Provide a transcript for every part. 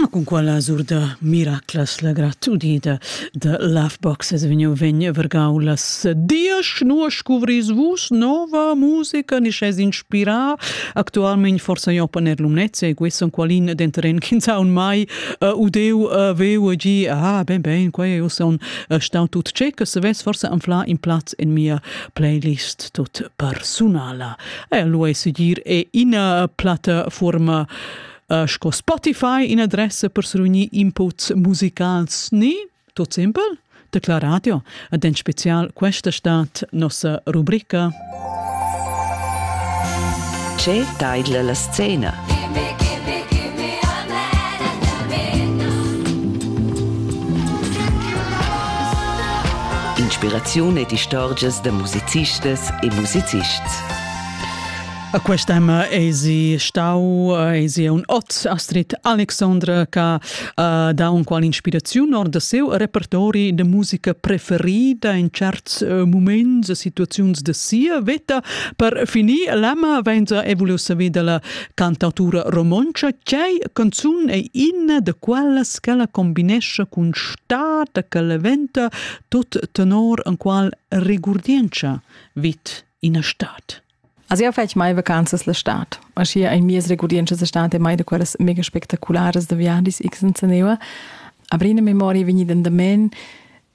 Ma cun quella sur da miraclas la gratudida da Lovebox es vegniu vegn vargau las diesch, nua scuvris vus nova musica ni sch'es inspirà actualmein forsa jo per Lumnezia e questo qualin denteren ch'ins ha un mai uh, udeu uh, veu e gi ah ben ben quei eu son uh, stau tut tschec se ves forsa anfla in plaz in mia playlist tut persunala E lo è segir è ina plattafurma uh, sco Spotify in adressa per srunir inputs musicals ni tot simpel Tecla Radio ed en special questa stat nossa rubrica Ce taidla la scena? Inspiraziun ed istorgias da musicistas e musicists. A questa tema esi stau esi un ot Astrid Alexandra che uh, dà un qual inspiraziun or da seu repertori de musica preferida in certs uh, moments e situaziuns de sia veta per finir l'ama venza evolio saver dalla Cantautura romontscha ch'ei canzun ei ina da quellas ch'ella combinescha cun star da claventa tot tenor enqual regurdientscha vid ina stad. Also io fetg mai vacanzas la stad. Aschia ei mies regurdientscha stat e mai da quellas mega spectacularas da viadis x senza neva. Aber in memoria vegni d'andamen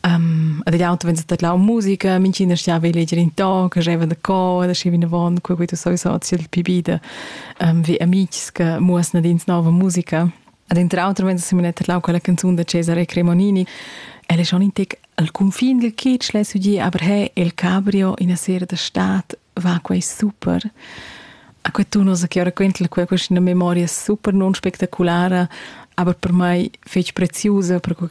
Um, ed jau vegn stat là musica, minchina stiava leger in ton, che gieva da cor, da schi vinavant, quei quei tu soisa sil pibi de um, vi amics che muosna dins nova musica. Ed inter auter vens a metter là quella canzun da Cesare Cremonini. El è schon in tec al confin del kitsch, lei sugli, aber hey, il cabrio in a sera da stat va quei super. A quei tu nos che ora quentl quei questa memoria super non spectaculara, aber per mai fec preziusa per quei